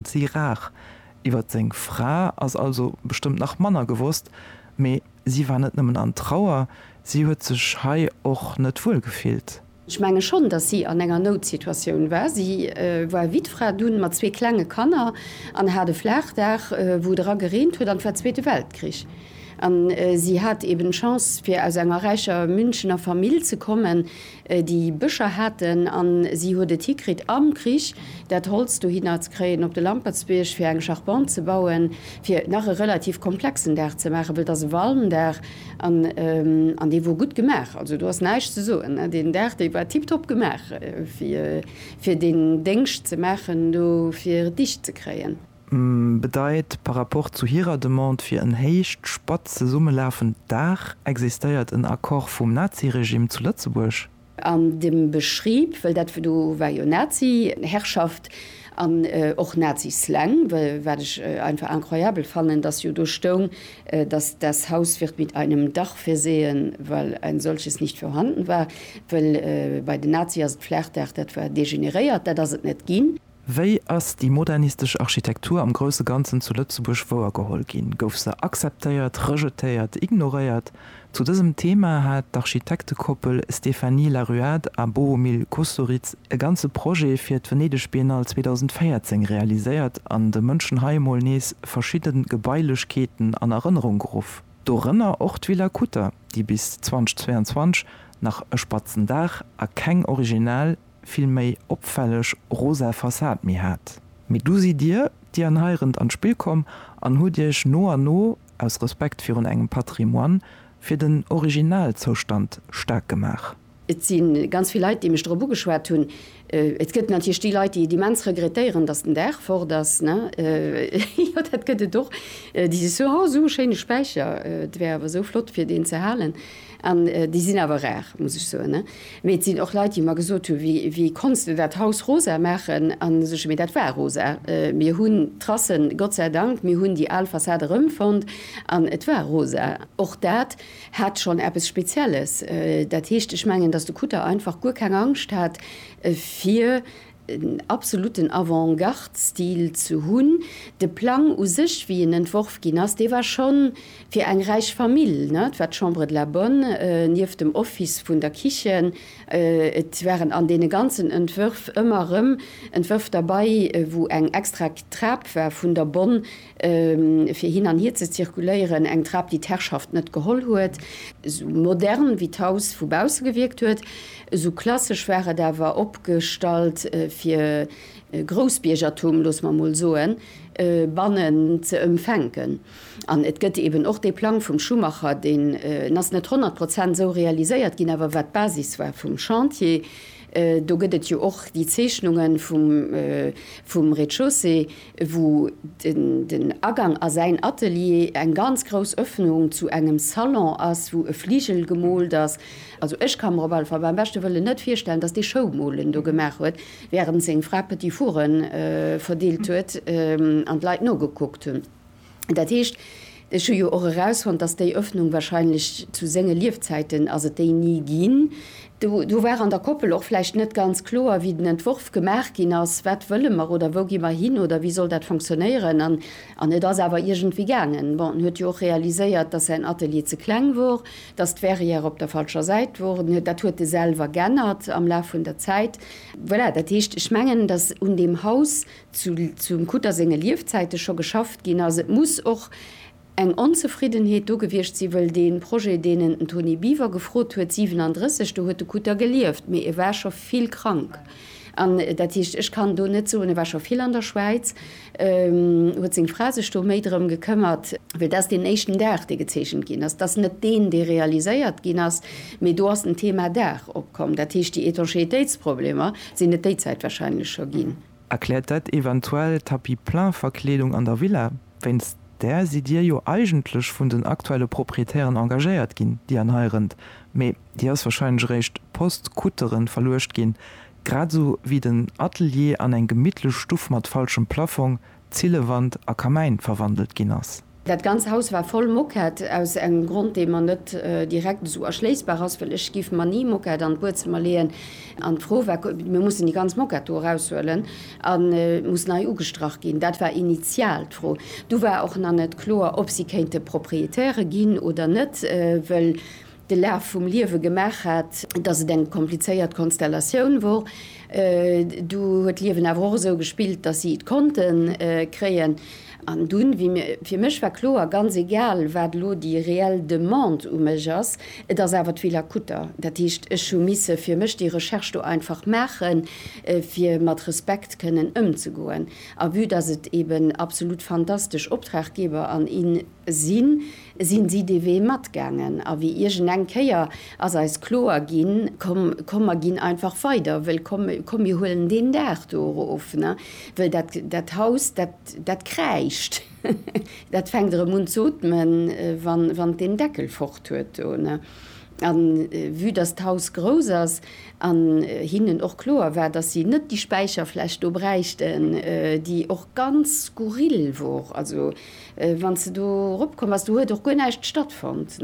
Si rar. Iwwer seng Fra ass also bestëmmt nach manner gewosst, mee si war net nëmmen an Trauer, si huet sech hei och net wuel gefillt. Ech menge schonn, datt si an enger Noutsituatioun war. Si war Wittfra, dunn mat zwee klenge Kanner an hat e Flaachdaach, wou et era gereent huet, an et war Zweete Weltkrich. An si hat eben d'Chance, fir aus enger räicher Münchener Famill ze kommen. Déi Bëscher haten, a si huet et hikritt am Krich, dat Holz dohinner ze kréien op de Lampertsbierg, fir eng Charpente ze bauen, fir nach e relativ komplexen Daach ze maachen, well et ass e Walmdaach an dee wor gutt gemaach. Also do ass näischt ze soen. Deen Daach, dee war tiptop gemaach, fir deen Déngscht ze maachen do, fir et dicht ze kréien. bedeit, par rapport zu hirer Demande fir en héicht spatz zesummelafend Daach, existéiert en Accord vum Naziregimm zu Lëtzebuerg? An dem Beschrieb, well dat do war jo Naziherrschaft an och Nazislang, wat ech einfach incroyabel fannen, dass jo do stoung, dass das Haus wird mit einem Dach versehen, weil ein solches nicht vorhanden war, well bei den Nazie ass d'Flaachdaach, dat war degeneréiert, dat ass et net ginn. Wéi ass déi modernistesch Architektur am grousse Ganzen zu Lëtzebuerg wouergeholl ginn? Gouf se akzeptéiert, rejetéiert, ignoréiert? Zu dësem Thema hat d'Architektekoppel Stéphanie Laruade a Bohumil Kusturiz e ganze Projet fir d'Venedeg Biennale 2014 realiséiert an de Mënschen hei emol nees verschidde Gebailechkeeten an Erënnerung geruff. Dorënner och d'Villa Kutter, déi bis 2022 nach e spatzen Daach a keng original, vill méi opfälleg rosa Fassad méi hat. Mee du sidd dir, dir an Heirent an d'Spill komm an hutt iech no an no, aus Respekt virun engem Patrimoine, fir den Originalzoustand staark gemaach. Et si ganz vill Leit, déi mech dorop ugeschwat hunn. Et gëtt natierlech déi Leit, déi et immens regrettéieren, datt den Daach fort ass. Jo, dat gëtt et och. Déi sech soen, Oh, esou e schéine Späicher, et wär awer esou flott, fir deen ze halen. An déi sinn awer rar, muss ech soen. Mee et sinn och Leit, déi mer gesot hu wéi konns de dat Haus rosa maachen? An da so ech, mee dat war rosa. Mir hunn d'Trassen, Gott sei Dank, mir hunn déi al Fassad erëmfonnt an et war rosa. Och dat hat schonn eppes Spezielles. Dat heescht, ech mengen, datt de Kutter einfach guer keng Angscht hat fir en absolutten Avant-garde-Stil ze hunn. De Plang u sech, wéi en entworf ginn ass, dee war schonn fir eng räich Famill. Et war d'Chambre de la Bonne nieft dem Office vun der Kichen. Et waren an deene ganzen Entwërf ëmmer erëm Entwërf derbei, wou eng extra Trap war vun der Bonne fir hin an hier ze zirkuléieren, eng Trap, déi d'Herrschaft net geholl huet, esou modern wéi d'Haus vu bausse gewierkt huet, esou klassesch war et awer opgestallt, fir Groussbiergertum, loosse mer emol soen, bannen ze emfänken. An et gëtt eben och dee Plang vum Schumacher, deen, en ass net honnert Prozent esou realiséiert ginn, awer wat d'Basis war vum Chantier, Do gëtt et jo och déi Zeechnungen vum Rez-de-chaussée, wou den Agang a säin Atelier eng ganz grouss Öffnung zu engem Salon ass, wou e Fligel gemoolt ass. Also ech ka mer op alle Fall beim beschte Wëllen net virstellen, dass dee Schoumolen do gemaach huet, wärend seng Fra Petit-four'en verdeelt huet an d'Leit nogekuckt hunn. Dat heescht, ech hu jo och erausfonnt, dass déi Öffnung wahrscheinlech, zu senge Liefzäiten ass et déi ni ginn, do war an der Koppel och vläicht net ganz kloer, wéi den Entworf gemaach ginn ass, wat wëlle mer oder wou gi mer hin oder wéi soll dat fonctionnéieren. An et ass awer iergendwéi gaangen. Bon, en huet jo och realiséiert, dass säin Atelier ze kleng wor, dass d'Verrière op der falscher Säit wor. Dat huet e selwer g'ännert am Laf vun der Zäit. Voilà, dat heescht, ech mengen, dass un deem Haus zu zum Kutter senge Liefzäite scho geschafft ginn ass. Et muss och eng Onzefriddenheet do gewiescht sinn, wëll dee Projet, deen en den Toni Biwer gefrot huet, 37, do huet de Kutter gelieft, mee e war scho vill krank. An dat heescht, ech kann do net soen, e war scho vill an der Schwäiz, huet seng Fra sech do méi drëm gekëmmert, well dat ass deen éischten Daach, dee gezeechent ginn ass, dat ass net deen, dee realiséiert ginn ass, mee do ass den Thema Daach opkomm. Dat heescht, déi Étanchéitéitsproblemer sinn et déi Zäit wahrscheinlech scho ginn. Erkläert dat eventuell Tapis-plein-Verkleedung an der Villa? Wéinst där sidd Dir jo eigentlech vun den aktuelle Proprietären engagéiert ginn, déi an hei rënnt, mee déi ass wahrscheinlech eréischt post kuttere verluecht ginn, grad esou wéi den Atelier an eng gemittlech Stuff mat falschem Plaffong, Zillewand a Kamäin verwandelt ginn ass. Dat ganz Haus war voll Moquette, aus engem Grond, dee mer net direkt esou erschléissbar ass, well ech giff mer ni Moquette an d'Buedzëmmer leeën. An d'Fro war, Mir mussen déi ganz Moquette do eraushuelen an et muss nei ugestrach ginn. Dat war initial d'Fro. Du war och nach net kloer, ob si kéinte Proprietäre ginn oder net, wëll de Laf vum Liewe gemaach hat, dass et eng komplizéiert Konstellatioun wor. Du huet d'Liewen awer och esou gespillt, dass si et konnte kréien. An dunn, wéi mir, fir mech war kloer, ganz egal wat elo déi reell Demande u mech ass, et ass awer d'Villa Kutter. Dat heescht, ech hu misse fir mech déi Recherche do einfach maachen, fir mat Respekt kënnen ëmzegoen. A vue dass et eeben absolut fantastesch Optraggeber an Sinn, sinn si dee Wee matgaangen. A wéi iergend eng Kéier ass eis kloer ginn, komm, komm mer ginn einfach weider, wëll komm, komm mir huelen deen Daach do erof, wëll dat, dat Haus, dat, dat kräischt, dat fänkt erëm un z'otmen, wann, wann et deen Deckel fort huet do. A vue dass d'Haus grouss ass an hinnen och kloer war, dass si net déi Späicherfläch do bräichten, déi och ganz skurril wor, also Wann s de do eropkomm bass, do huet och guer näischt stattfonnt,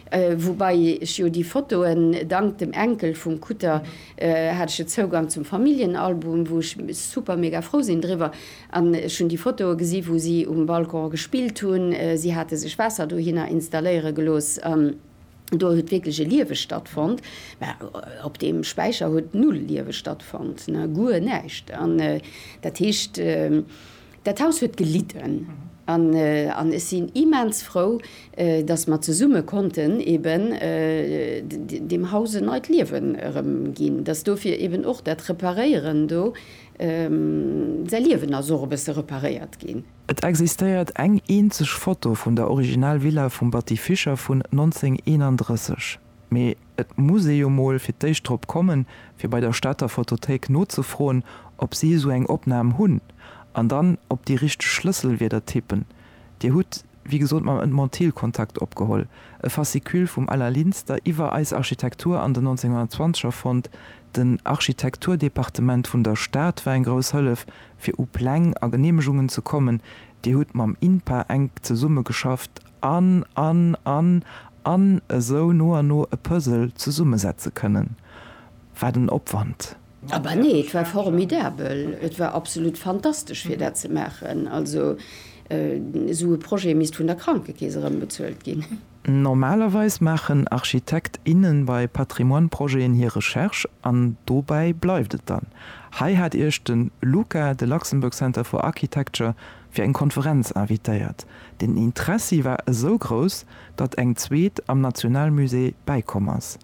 woubai ech jo déi Fotoen, dank dem Enkel vum Kutter hat ech jo Zougang zum Familljenalbum, wou ech super mega frou sinn driwwer. An ech hunn déi Fotoe gesi wou si um Balcon gespillt hunn, si hate sech Waasser dohinner installéiere gelooss an do huet wierklech e Liewe stattfonnt. Mä op deem Späicher huet null Liewe stattfonnt, guer näischt. An dat heescht, Dat Haus huet gelidden an ech sinn immens frou, dass mer zesumme konnten eben deem Haus en neit Liewen erëm ginn, dass dofir eben och dat Reparéieren do, säi Liewen ass och e bësse reparéiert ginn. Et existéiert eng eenzeg Foto vun der Original-Villa vum Batty Fischer vun 1931, mee Et muss ee jo mol fir d'éischt drop kommen, fir bei der Stater Photothéik nozefroen, ob si esou eng Opnam hunn, an dann op déi richteg Schlësselwierder tippen. Dir hutt, wéi gesot, mam Ed Montil Kontakt opgeholl, e Fascicule vum Alain Linster iwwer eis Architektur an den 1920er fonnt. Den Architekturdepartement vun der Stad war eng grouss Hëllef, fir u Pläng a Geneemegungen ze kommen. Dir hutt mam INPA enk zesummegeschafft. an an an an esou no an no e Puzzle zesummesetze kënnen. Wat en Opwand! Aber nee, et war formidabel, et war absolut fantastesch fir dat ze maachen. Also esou e Projet misst vun der Krankekeess erëmbezuelt ginn. Normalerweis maachen Architekt, innen bei Patrimoine-Projeten hir Recherche an dobäi bleift et dann. Hei hat iech de LUCA, de Luxembourg Centre for Architecture, fir eng Konferenz invitéiert. Den Interessi war esou grouss, datt eng zweet am Nationalmusée bäikomm ass.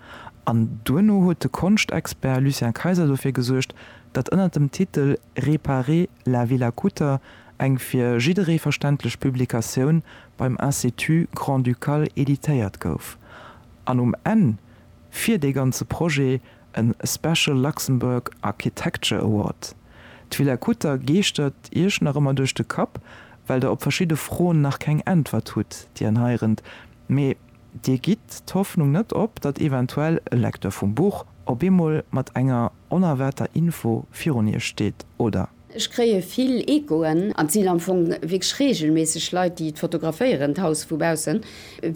An duerno huet de Konschtexpert Lucien Kayser dofir gesuergt, datt ënner dem Titel Réparer la Villa Kutter eng fir jidderee verständlech Publikatioun beim Institut grand-ducal editéiert gouf. An um Enn, fir dee ganze Projet e Special Luxembourg Architecture Award. D'Villa Kutter geeschtert Iech nach ëmmer duerch de Kapp, well Der op verschidde Froen nach keng Äntwert hutt, déi an hei rënnt. Mee Dir gitt d'Hoffnung net op, datt eventuell e Lecteur vum Buch op eemol mat enger onerwaarter Info virun Iech steet, oder? Ech kréie vill Echoen an et sinn am Fong wierklech reegelméisseg Leit, déi et fotograféieren, d'Haus vu baussen,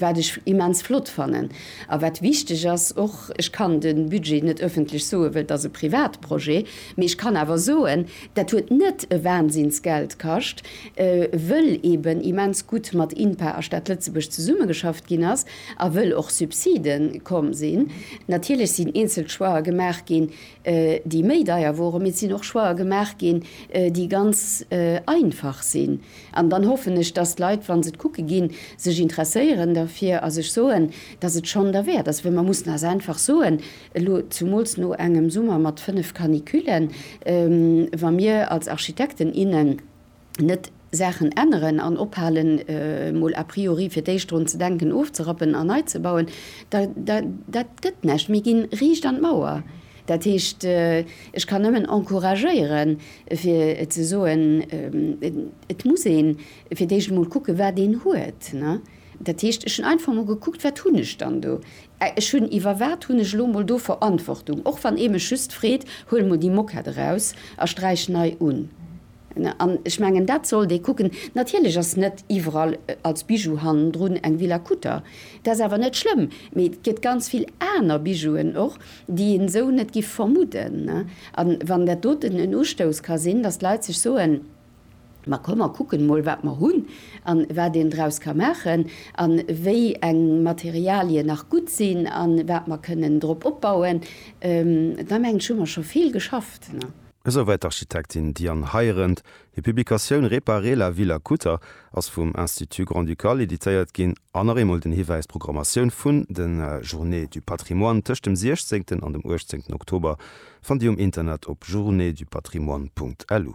wat ech immens flott fannen. A wat wichteg ass och, ech kann de Budget net ëffentlech soen, well et ass e Privatprojet, mee ech kann awer soen, dat huet net e Wahnsinnsgeld kascht, wëll eeben immens gutt mat INPA a Stad Lëtzebuerg zesummegeschafft ginn ass a wëll och Subside komm sinn. Natierlech sinn eenzel Choixë gemaach ginn, déi méi deier woren, mee et sinn och Choixer gemaach ginn, déi ganz einfach sinn. An dann hoffen ech, dass d'Leit, wa se et kucke ginn, sech interesséieren derfir a sech soen, dass et schonn derwäert ass. Well mer mussen eis einfach soen, elo zumools no engem Summer mat fënnef Canicullen, wa mir als Architekten, innen net Saachen änneren an ophalen, mol a priori fir d'éischt drun ze denken ofzerappen an nei ze bauen, da, da, dat gëtt näischt. Mir ginn riicht an d'Mauer. Dat heescht, ech kann nëmmen encouragéieren, fir ze soen, et muss een fir d'éischt emol kucken, wat een huet. Dat heescht, ech hunn einfach emol gekuckt, wat hunn ech dann do? Ech hunn, iwwer wat hunn ech elo emol do Verantwortung? Och wann ee mech just freet, Huel emol déi Moquette eraus a sträich nei un. An ech mengen, dat sollt ee kucken. Natierlech ass net iwwerall als Bijou hannendrun eng Villa Kutter. Dat ass awer net schlëmm. Mee et gëtt ganz vill aner Bijouen och, déi een esou net giff vermudden. A wann dat doten en Ustouss ka sinn, datt d'Leit sech soen, Ma komm, mer kucken emol, wat mer hunn an wat een draus ka maachen an wéi eng Materialien nach gutt sinn an wat mer kënnen drop opbauen, da mengen ech, hu mer scho vill geschafft. Esouwäit d'Architektin Diane Heirendt. Hir Publikatioun Réparer la ville à Kutter ass vum Institut Grand-Ducal editéiert ginn. An nach eemol den Hiwäis, D'Programmatioun vun de Journées du patrimoine tëscht dem 16 an dem 18 Oktober fannt Dir um Internet op journeesdupatrimoine.lu.